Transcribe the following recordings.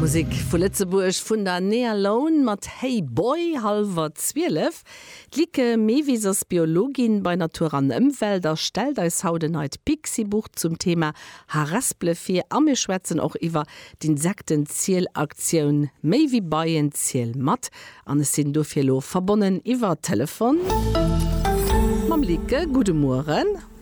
Musek vu Lëtzebuerg vun der Nea Lone mat Hey Boy, hallwer 12. D'Lieke Mewis ass Biologin bei Natur an Ëmwelt a stellt eis haut e neit Pixibuch zum Thema Harespele vir. A mir schwätzen och iwwer d'Insektenzielaktioun Méi wéi Beien, ziel mat! an ech sinn dofir elo verbonnen iwwer Telefon mam Lieke. Gudde Mueren.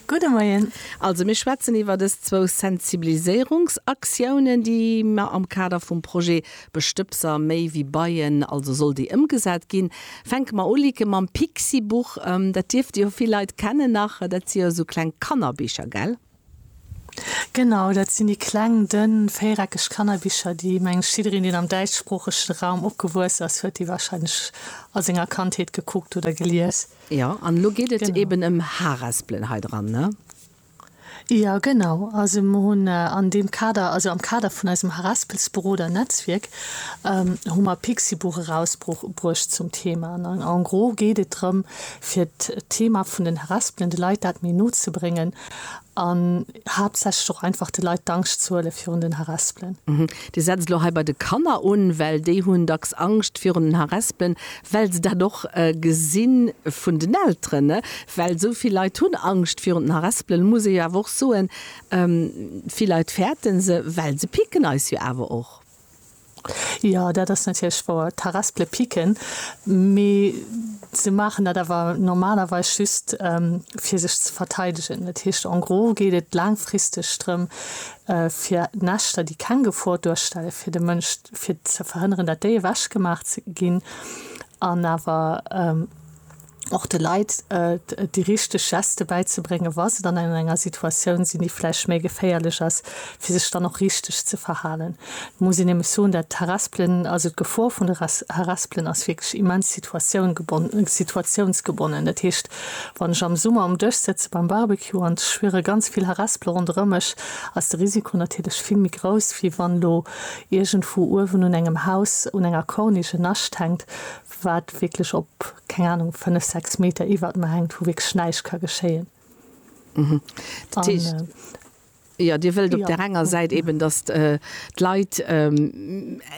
Gudde Moien. Also mir schwätzen iwwer dës zwou Sensibiliséierungsaktiounen, déi mer am Kader vum Projet Bestëbser méi wéi Beien, also soll dee ëmgesat ginn. Fänke mer u, Lieke, mam Pixibuch. Dat dierfte jo vill Leit kennen nach, dat si jo esou kleng Kannerbicher, gell? Genau, dat sinn déi kleng, dënn, véiereckeg Kannerbicher, déi mengs jiddereen, deen am däitschsproochege Raum opgewuess ass, huet déi warscheinlech a senger Kandheet gekuckt oder gelies. Jo, an elo geet et eben ëm Haaraspelen hei dran, ne? Jo, genau. Also mer hunn an deem Kader, also am Kader vun eisem Haaraspelsberoder-Netzwierk, hu mer e Pixibuch erausbruecht zum Thema. An en gros geet et drëm, fir d'Thema vun den haraspelende Leit dat méi no ze bréngen, an haaptsächlech och einfach de Leit d'Angscht z'huele virun den Harespelen. Dir setzt elo hei bei de Kanner un, well déi hunn dacks Angscht virun den Harespelen, well se dat och gesi vun den Elteren, well esou vill Leit hunn Angscht virun den Harespelen. Elo muss ee jo awer och soen, vill Leit fäerte se, well se picken eis jo awer och. Jo, dat ass natierlech wouer, Tarrest le piquen. Mee se maachen dat awer normalerweis just, fir sech ze verteidegen. Dat heescht, en gros geet et laangfristeg drëm, fir Näschter, déi keng Gefor duerstellen fir de Mënsch, fir ze verhënneren, datt déi ewechgemaach ginn an awer, och de Leit déi richteg Geste bäizebréngen, wa se dann an enger Situatioun sinn, déi vläicht méi geféierlech ass, fir sech dann och richteg ze verhalen. Et muss een nämlech soen, dat Harespelen, also d'Gefor vun de Harespelen ass wierklech immens situationgebonnen, situatiounsgebonnen. Dat heescht, wann ech am Summer um Dësch sëtze beim Barbecue an ech spiere ganz vill Harespele ronderëm mech, ass de Risiko natierlech vill méi grouss, wéi wann elo iergendwou uewen un engem Haus, un enger Corniche en Nascht hänkt, wat wierklech op, keng Ahnung, fënnef, sechs Meter iwwert mer hänkt, wou wierklech näischt ka geschéien. Dat heescht, jo, Dir wëllt op där enger Säit eeben, datt d'Leit,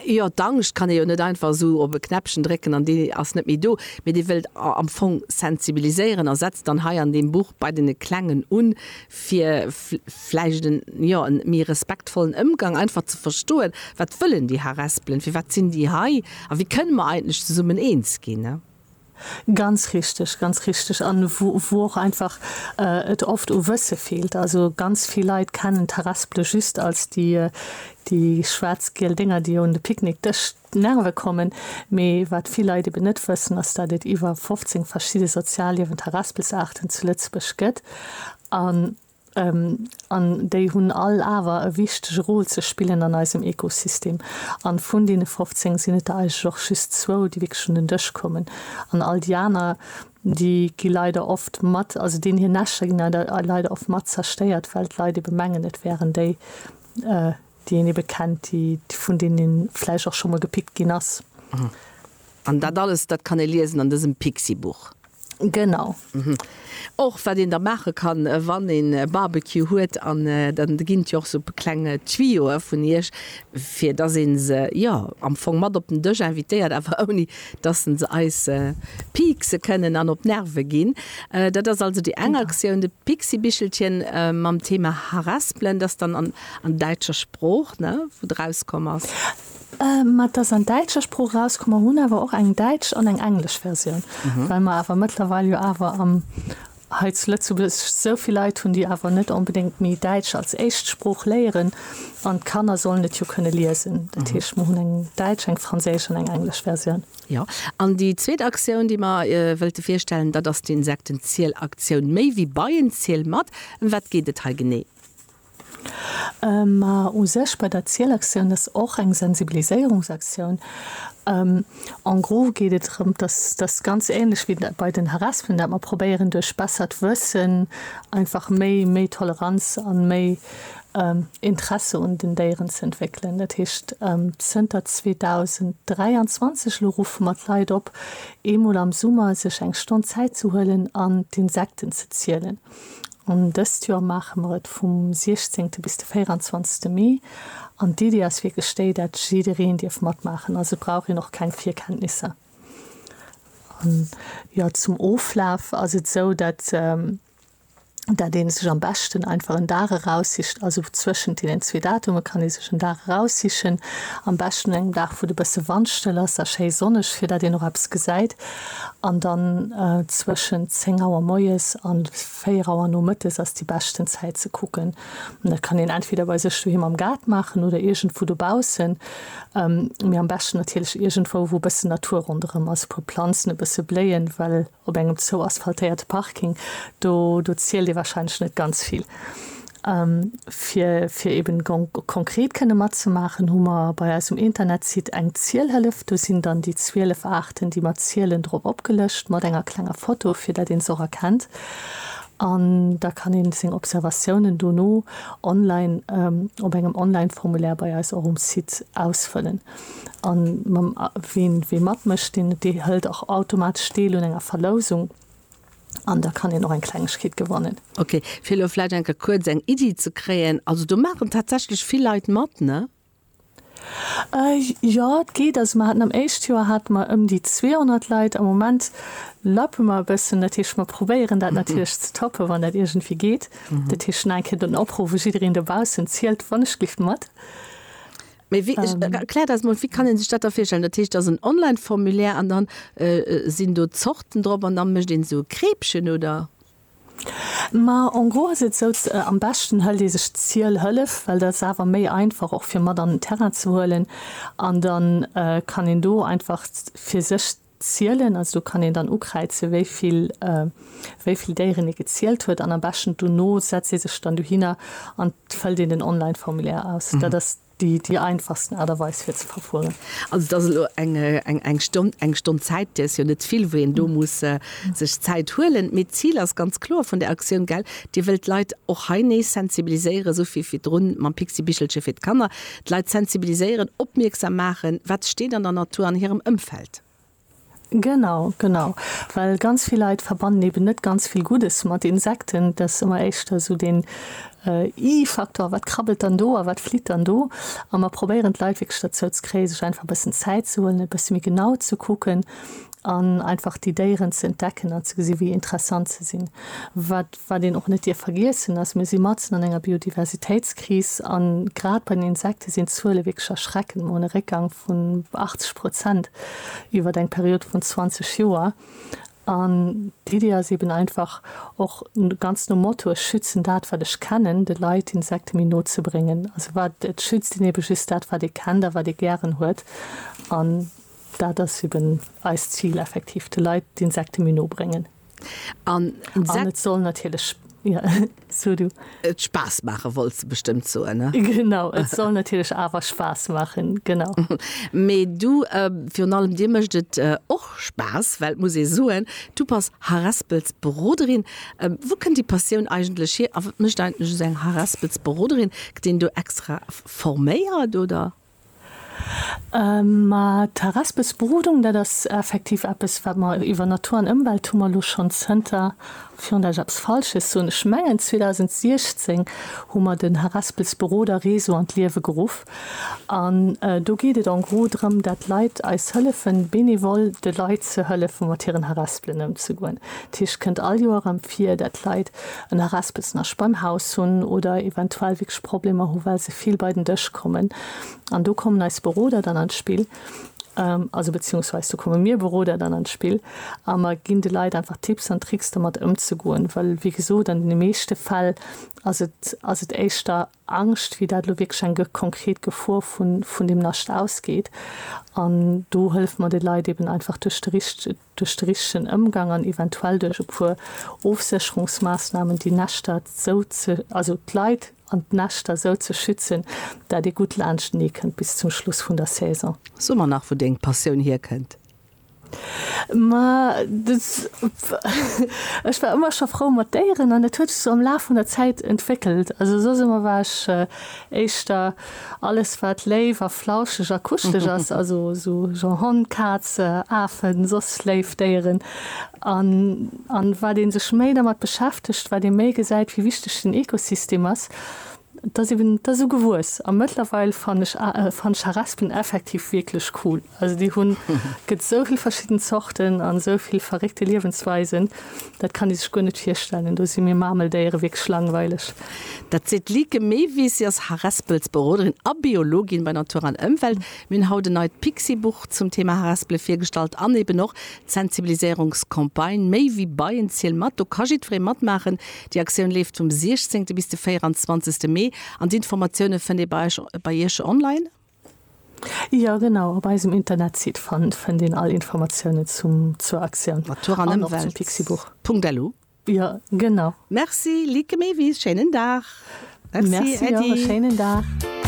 jo, d'Angscht kann ee jo net einfach esou op e Knäppchen drécken an déi ass net méi do, mee Dir wëllt am Fong sensibiliséieren a setzt dann hei an deem Buch bei deene Klengen un, fir vläicht en, jo, en méi respektvollen Ëmgang, einfach ze verstoen, wat wëllen déi Harespelen, firwat sinn déi hei a wéi kënne mer eigentlech zesummen eens ginn? Ganz richteg, ganz richteg. An wou wou och einfach et oft u Wësse feelt. Also ganz vill Leit kennen d'Harespele just als déi déi schwaarz-giel Dénger, déi un de Picknickdësch Nerve kommen. Mee wat vill Leit eben net wëssen, ass dat et iwwer 15 verschidde sozialliewend Haraspelsaarten zu Lëtzebuerg gëtt an an déi hunn all awer e wichtege Rôle ze spillen an eisem Ekosystem. An vun deene 15 sinn et der eigentlech och just zwou, déi wierklech un den Dësch kommen an all déi aner, déi gi leider oft mat, also deenen hir Näschter ginn leider oft mat zerstéiert, well d'Leit eben mengen, et wären déi, déi een ebe kennt, déi vun deenen ee vläicht och scho mol gepickt ginn ass. An dat alles, dat kann ee liesen an dësem Pixi-Buch? Genau. Och wat een da maache kann, wann een e Barbecue huet, an da ginn et jo och esou kleng Tuyauxe vun Iech, fir dass ee se, jo, am Fong mat op den Dësch invitéiert, awer ouni dass se eis piekse kënnen an op d'Nerve ginn. Dat ass also déi eng Aktioun, de Pixi-Bichelchen mam Thema Harespelen, dat dann an. An däitscher Sprooch, ne, wou de rauskomm ass. Mä et ass an däitscher Sprooch erauskomm. Mer hunn awer och eng däitsch an eng englesch Versioun, well mer awer mëttlerweil jo awer am, hei zu Lëtzebuerg esou vill Leit hunn, déi awer net onbedéngt méi Däitsch als éischt Sprooch léieren. An d'Kanner sollen et jo kënne liesen. Dat heescht, mer hunn eng däitsch, eng franséisch an eng englesch Versioun. Jo. An déi zweet Aktioun, déi mer wëlte virstellen, dat ass d'Insektenzielaktioun Méi wéi Beien, ziel mat! Ëm wat geet et hei genee? Mä u sech bei der Zielaktioun, dat ass och eng Sensibiliséierungsaktioun. En gros geet et drëm, dass, dass se ganz ähnlech wéi bei den Haraspen, dat mer probéieren duerch bessert Wëssen einfach méi, méi Toleranz an méi Interesse un den Déieren ze entwéckelen. Dat heescht, zënter 2023 elo ruffe mer d'Leit op, eemol am Summer sech eng Stonn Zäit ze huelen an d'Insekten ze zielen. An dëst Joer maache mer et vum 16 bis de 24 Mee. An d'Iddi ass wierklech déi, dat jiddereen dierf matmaachen. Also et brauch een och keng Virkenntnisser. An jo, zum Oflaf ass et esou, dat dat een sech am beschten einfach en Dag eraussicht. Also zwëschent deenen zwee Datume kann ee sech en Dag eraussichen. Am beschten un engem Dag, wou et e bësse wandstëll ass a schéi sonneg, fir dat een och eppes gesäit. An dann zwëschent 10 Auer moies an 4 Auer nomëttes ass déi beschten Zäit ze kucken. An dat kann een entweder bei sech doheem am Gaart maachen oder iergendwou dobaussen. Mee am beschten natierlech iergendwou, wou e bëssen Natur ronderëm ass, e puer Planzen, e bësse Bléien, well op engem zou asphaltéierte Parking, do, do zielt ee warscheinlech net ganz vill. Fir fir eben konkret kënne matzemaachen, hu mer bei eisem Internetsite eng Zielhëllef. Do sinn dann déi 12 Aarten, déi mer zielen, drop opgelëscht mat enger klenger Foto, fir datt een se och erkennt. An da kann ee seng Observatiounen dono online op engem Online-Formulaire bei eis och um Site ausfëllen. An mam, ween, wee matmécht, deen, dee hëlt och automatesch deel un enger Verlousung. An da kann een och eng Klengegkeet gewannen. Ok, fir elo vläicht eng Kéier kuerz eng Iddi ze kréien, also do maachen tatsächlech vill Leit mat, ne? Jo, et geet. Also mer haten am éischt Joer hate mer ëm déi 200 Leit. Am Moment lappe mer e bëssen, dat heescht mer probéieren dat natierlech ze toppen, wann dat iergendwéi geet. Dat heescht nach eng Kéier den Opruff u jiddereen dobaussen, Zielt wann e Schliff mat. Mee wéi, ech, ähm. erklär dat mol, wéi kann een sech dat da virstellen? Dat heescht, dat ass en Online-Formulaire an dann sinn do Zorten drop an da mécht een esou Kreepchen, oder? Ma en gros ass et esou, am beschten hëlt ee sech d'Zielhëllef, well dat ass awer méi einfach och fir mat an den Terrain ze huelen an dann kann een do einfach fir sech Zielen, also do kann een dann ukräizen, wéi vill, wéi vill Déieren ee gezielt huet, an am beschten dono setzt ee sech dann dohinner an et fëllt een den Online-Formulaire aus. Dat ass déi, déi einfachsten Aart a Weis fir ze verfueren. Also et ass elo eng, eng, eng Stonn, eng Stonn Zäit, déi ass jo net vill, wou een do muss sech Zäit huelen. Mee d'Zil ass ganz kloer vun där Aktioun, gell, Dir wëllt d'Leit och hei nees sensibiliséieren, esou wéi virdrun mam Pixibichelche fir d'Kanner. D'Leit sensibiliséieren, opmierksam maachen, wat steet an der Natur an hirem Ëmfeld. Genau, genau. Well ganz vill Leit verbannen eben net ganz vill Guddes mat Insekten. Dat ass ëmmer éischter esou deen I-Faktor, wat krabbelt dann do a wat flitt dann do? A mer probéieren d'Leit wierklech derzou ze kréien, sech einfach e bëssen Zäit ze huelen, e bësse méi genau ze kucken an einfach déi Déieren ze entdecken an ze gesinn, wéi interessant se sinn. Wat Wat een och net dierf vergiessen ass, mir si matzen an enger Biodiversitéitskris a grad bei den Insekte sinn d'Zuele wierklech erschreckend. Mer hunn e Réckgang vun 80 Prozent iwwert eng Period vun 20 Joer. An d'Iddi ass eeben einfach, och ganz nom Motto ech schützen dat, wat ech kennen, de Leit d'Insekte méi no ze bréngen. Also wat et schützt een eebe just dat, wat ee kennt a wat ee gären huet. An dat ass eeben eist Zil effektiv, de Leit d'Insekte méi no bréngen. Et soll natierlech Spaass maachen, wollt se bestëmmt soen. Genau, et soll natierlech awer Spaass maachen, genau. Mee du, virun allem dir mécht et och Spaass, well, muss ee soen, du bass Harespelsberoderin. Wou kënnt déi Passioun eigentlech hier a wat mécht eigentlech esou eng Harespelsberoderin? Gëtt een do extra forméiert, oder? Ma d'Harespesbrodung, dat ass effektiv eppes, wat mer iwwer Natur an Ëmwelt hu mer elo schonn zënter, virun dass ech eppes Falsches soen, ech mengen 2016 hu mer den Harespelsberoderreseau an d'Liewe geruff. An do geet et en gros drëm, dat d'Leit eis hëllefen, benevole de Leit ze hëllefen, mat hiren Harespelen ëmzegoen. Dat heescht, et kënnt all Joer erëm vir, dat d'Leit en Arespelsnasch beim Haus hunn oder eventuell wierklech Problemer hu well se vill bei den Dësch kommen. An do kommen eis Beroder dann an d'Spill, also beziungsweis do komme mir Beroder dann an d'Spill a mer ginn de Leit einfach Tipps an Tricks domat ëmzegoen, well wéi gesot an deene meeschte Fäll ass et ass et éischter Angscht wéi dat elo wierklech eng konkret Gefor vun vun deem Nascht ausgeet an do hëllfe mer de Leit eben einfach duerch de richtegen duerch de richtegen Ëmgang an eventuell duerch e puer Ofsécherungsmaassnahmen déi Näschter sou ze, also d'Leit an d'Näschter sou ze schützen, dat ee gutt laanschtenee kënnt bis zum Schluss vun der Saison. So mer nach, wou deng Passioun hierkënnt? Ma des, ech war ëmmer scho frou mat Déieren an dat huet sech sou am Laf vun der Zäit entwéckelt. Also soss ëmmer war ech éischter. Alles wat léif a flauscheg a kuschelech ass, also sou Genre Hond, Kaz, Afen, soss léif Déieren. An wat ee sech méi dermat beschäftegt, wat ee méi gesäit wéi wichteg den Ekosystem ass. Dat ass eben, dat ass esou gewuess a mëttlerweil fann ech Charaspen effektiv wierklech cool. Also déi hunn, gëtt esou vill verschidden Zorten an esou vill verréckte Liewensweisen, dat kann ee sech guer net virstellen. Do si mir Marmeldéiere wierklech langweileg. Dat seet d'Lieke Mewis. Si ass Harespelsberoderin a Biologin bei Natur an Ëmwelt. Mir hunn haut en neit Pixi-Buch zum Thema Harespele virgestallt an eben och d'Sensibiliséierungscampagne Méi wéi Beien, ziel mat! Do ka jiddweree matmaachen. Déi Aktioun leeft vum 16. bis de 24. Mee an d'Informatioune fënnt ee bei eis, bei iech online. Jo genau, op eisem Internetsite fannt fënnt een all Informatiounen zum zur Aktioun Natur an Ëmwelt an och zum Pixibuch. Punkt-elo. Jo genau. Merci Lieke Mewis, schéinen Dag. Merci, Merci och, e schéinen Dag.